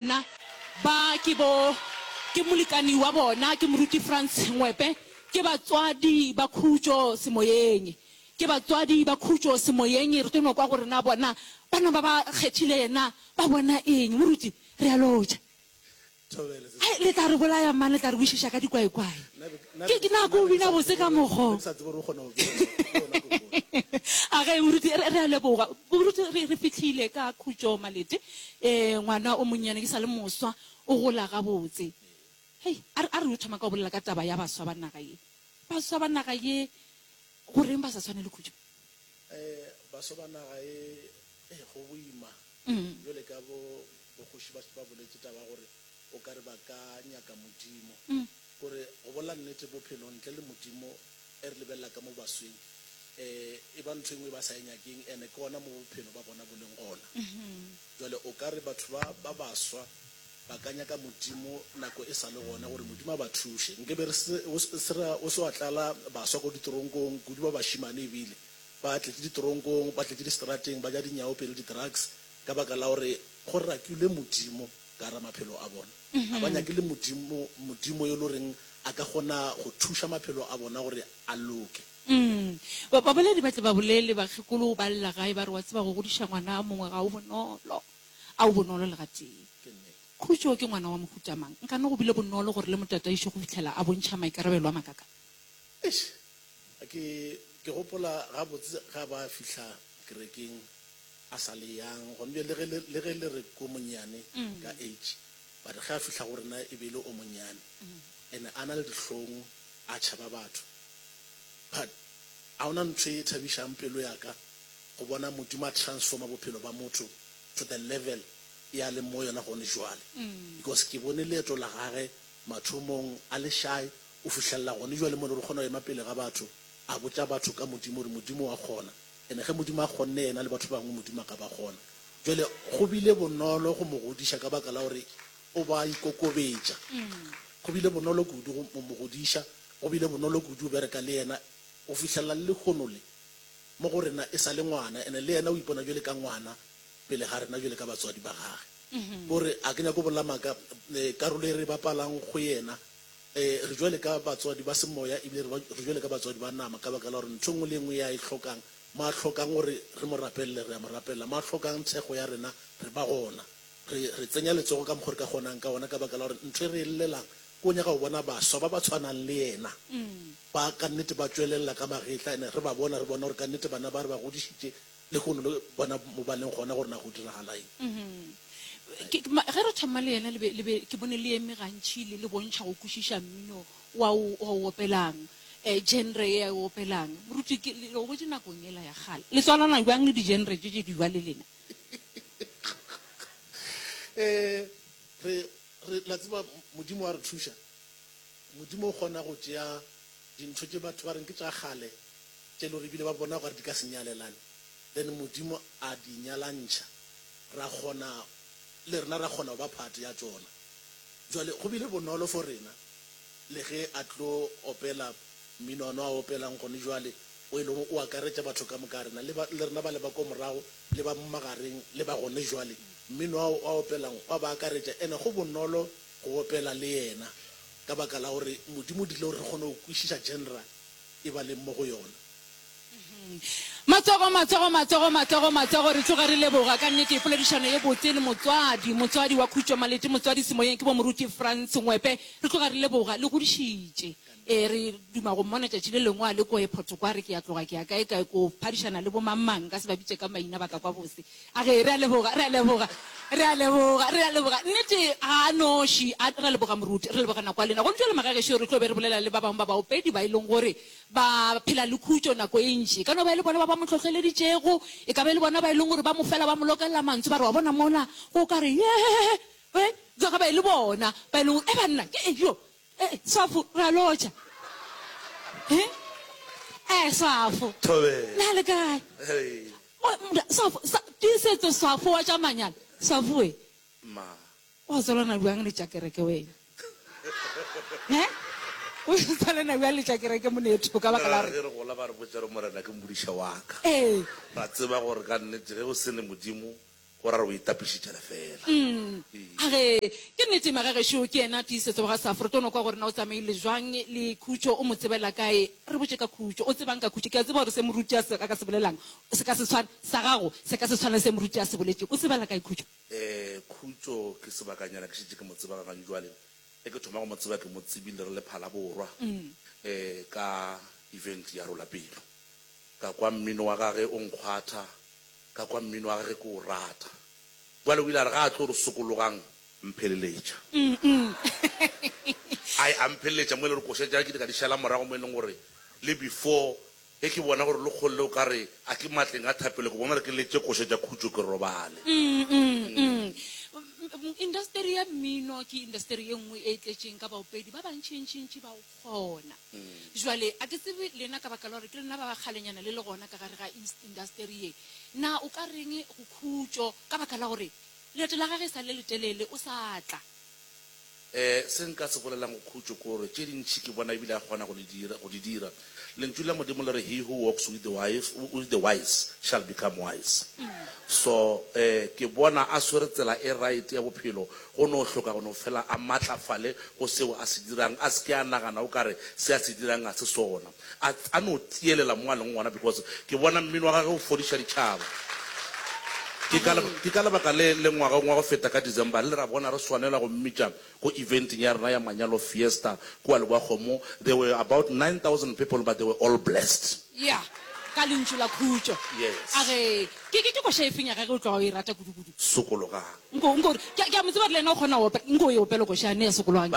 Na ba ke bo, ke molekani wa bona, ke Moruti Franz Ngwepe, ke batswadi ba khutšo semoyeng. Ke batswadi ba khutšo semoyeng. Re tlo no kwa gore na bona bana ba ba kgethile yena ba bona eng. Moruti, re a lotšha. Thobela, sesi. Hai, le tla re bolaya mane, le tla re wišiša ka dikwaekwae. Nna be, nna be, Ke nako o nna be ke bina sa botse tsebe ka gore- mokgo. nna be ke sa tsebe gore o kgona go bina jwang. Ke yona kokoro. Age, Moruti, re, re a leboga. Moruti, re, re fihlile ka khutšo Malete. Ee, ngwana o monnyane, ke sa le moswa, o gola gabotse. Hei, a re, a re yo thoma ka go bolela ka taba ya baswa ba naga ye. Baswa ba naga ye, goreng ba sa tshwane le Khutšo? Ee, baswa ba naga ye, ee, go boima. Bjale ka bo, bokgoši ba, ba boletše taba ya gore o ka re ba ka nyaka Modimo. Gore go bolela nnete, bophelo ntle le Modimo Ge re lebelela ka mo basweng, e e ba ntho e nngwe e ba sa e nyakeng, ene ke gona mo bophelo ba bona bo leng gona. Jwale o ka re batho ba, ba baswa ba ka nyaka Modimo nako e sa le gona, gore Modimo a ba thuše. Nke be re se, o se, se ra, o se wa tlala baswa ko ditoronkong, kudu ba bašemane e bile, ba tletše ditoronkong, ba tletše diseterateng, ba ja dinyaopelo, di-drugs, ka baka la gore go rakilwe Modimo ka gare ga maphelo a bona. Ga ba nyake le Modimo, Modimo yo lo reng a ka kgona go thuša maphelo a bona gore a loke. Umm. Ba, baboledi ba tle ba bolele, Bakgekolo o ba lla gae, ba re, Wa tseba, go godiša ngwana a mongwe ga o bonolo. A o bonolo le gatee. Ke nnete. Khutšo ke ngwana wa mohuta mang? Nkane go bile bonolo gore le mo tataiše go fihlela a bontšha maikarabelo a makakang? Eish! Ke, ke gopola gabotse ga ba fihla kerekeng, a sa le yang gona bjale, le ge le, le ge le re ko monnyane ka age, but ge a fihla go rena e be e le o monnyane, and a na le dihlong, a tšhaba batho. But ga gona ntho e thabišang pelo ya ka go bona Modimo a transforma bophelo ba motho to the level e a leng mo go yona gone bjale, because ke bone leeto la gage mathomong a le shy go fihlelela gone bjale mo e lego gore o kgona go ema pele ga batho a botša batho ka Modimo gore Modimo wa kgona. And ge Modimo a kgonne yena le batho ba bangwe, Modimo a ka ba kgona. Bjale go bile bonolo go mo godiša ka baka la gore o ba a ikokobetša. Go bile bonolo kudu go mo godiša, go bile bonolo kudu go bereka le yena go fihlelela le lehono le, mo go rena e sa le ngwana. And le yena o ipona bjale ka ngwana pele ga rena bjale ka batswadi ba gage. Ko re a ke nyake go bolela maaka, karolo e re e bapalang go yena Ee, re bjale ka batswadi ba semoya ebile re re bjale ka batswadi ba nama ka baka la gore ntho e nngwe le e nngwe ya e hlokang, mo a hlokang gore re mo rapelele, re a mo rapelela, mo a hlokang thekgo ya rena, re ba gona. Re re tsenya letsogo ka mokgo re ka kgonang ka gona ka baka la gore ntho e re e llelang ke go nyaka go bona baswa ba ba tshwanang le yena ba ka nnete ba tšwelelela ka magetla and re ba bona, re bona gore ka nnete bana ba re ba godišitše Lehono le bona mo ba leng gona gore na go diragalaeng. Ke, ke, ma, ge re thoma le yena le be, le be ke bone le eme gantši le, le bontšha go kwešiša mmino wa o, wa o opelang, eh, genre ye a e opelang. Moruti, ke, le, le gobotše nakong yela ya kgale. Le tswalana bjang le di-genre tše tše dibjale lena? Eh, re, re, la tseba, Modimo wa re thuša. Modimo o kgona go tšea dintho tše batho ba reng ke tša kgale, tše lore ebile ba bona gore di ka se nyalelane then Modimo a di nyalantšha ra kgona le rena ra kgona go ba part ya tšona. Jwale go bile bonolo for rena le ge a tlo opela mmino ono a opelang gone jwale o e lego o akaretša batho ka moka rena le le rena ba le ba ko morago le ba magareng le ba gone jwale mmino ao a opelang wa ba akaretša ene go bonolo go opela le yena ka baka la gore Modimo o dirile gore re kgone go kwešiša genre e ba leng mo go yona. Matsogo, matsogo, matsogo, matsogo, matsogo, re tloga re leboga, ka nnete, poledišano e botse le motswadi, motswadi wa Khutšo Malete, motswadi semoyeng ke bomoruti Frans Ngwepe. Re tloga re leboga, le godišitše. Ee, re duma go mmona tšatši le lengwe a le ko ephoto kwa, a re ke ya tloga ke ya kae-kae, ko phadišana le bo mang-mang, nka se ba bitše ka maina, ba ka kwa bose. A ge, re a leboga, re a leboga, re a leboga, re a leboga. Nnete, ga a noši. A, re a leboga, moruti. Re leboga nako ya lena. Gomme bjale, magagešo, re tlo be re bolela le ba bangwe ba baopedi ba e leng gore ba phela le khutšo nako e ntši. E ka no ba e le bona ba ba mo hlohleleditšego, e ka ba e le bona ba e leng gore ba mo fela ba mo lokelela mantso, ba re, Wa bona, mola go ka re, Yee, e, ga ba e le bona ba e leng gore, Ee, banna, ke eng yo? Eh, Swafo, ra lotšha. He? Eh, Swafo. Thobela. Na le kae? Hey. Mo, mda, Swafo, sa, tiisetso Swafo wa tša manyalo. Swafoe. Ma. Wa tswalana bjang le tša kereke wena? He? O tswalana bjang le tša kereke monetho ka baka la gore? Ge re gola ba re botša re Morena ke mmodiša wa ka. Ee. Ra tseba gore ka nnete ge o se ne Modimo Go ra re o itapišitše lefeela. Umm. A re, Ke nnete, Maka gešo, ke yena tiisetso wa ga Safro. Tono kwa gore na o tsamaile bjang le Khutšo, o mo tsebela kae? Re botše ka Khutšo. O tseba'ng ka Khutšo? Ke a tseba gore se Morutiasi a ka se bolelago se ka se tshwane, sa gago se ka se tshwane le se Morutiasi a se boletšego. O tsebela kae Khutšo? Ee, Khutšo ke sebakanyana ke šetše ke mo tseba gagane bjale. Ge ke thoma go mo tseba ke mo tsebile re le Phalaborwa ka event ya Rola Pelo. Ka kwa mmino wa gage o nkgwatha Ka kwa mmino wa gage ke o rata. Bjale o ile a re ga a tlo re sokologang. Mpheleletša. Ai, a mpheleletša mo e le gore koša tša ka ke ile ka di šala morago mo e leng gore le before ge ke bona gore Lekgolle o ka re a ke matleng a thapelo ke bona gore ke letše koša tša khutšo ke robale. Indasteri ya mmino ke indasteri e nngwe e tletšeng ka baopedi ba bantšintšintši bao gona. Bjale, a ke tsebe lena ka baka la gore ke lena ba ba kgalenyana le le gona ka gare ga ins, indasteri ye, na o ka reng go khutšo ka baka la gore leeto la gagwe e sa le letelele, o sa tla. Ee, se nka se bolelang go khutšo ke gore tše dintši ke bona e bile a kgona go le dira, go di dira. Lentšu la Modimo le re, He who walks with the wise, with the wise shall become wise. So, ee, ke bona a swere tsela e right ya bophelo Go no hloka go no fela a maatlafale go seo a se dirang, a se ke a nagana o ka re se a se dirang ga se sona. A, a no tiyelela mo a leng gona, because ke bona mmino wa gage o fodiša ditšhaba. Ke ka, ke ka lebaka le le ngwageng wa go feta ka December, re ile ra bona re swanela go mmitša ko eventeng ya rena ya manyalo fiesta kua Lebowakgomo. There were about 9,000 people but they were all blessed. Ya, ka Lentšu la Khutšo. Yes. A re, Ke, ke, ke koša efeng ya gage o tloga o e rata kudu-kudu? Sokologang. Nko, nko, ke a, ke a mo tseba re le yena o kgona go opela. Nko o e opele košane ya sokolwang ke.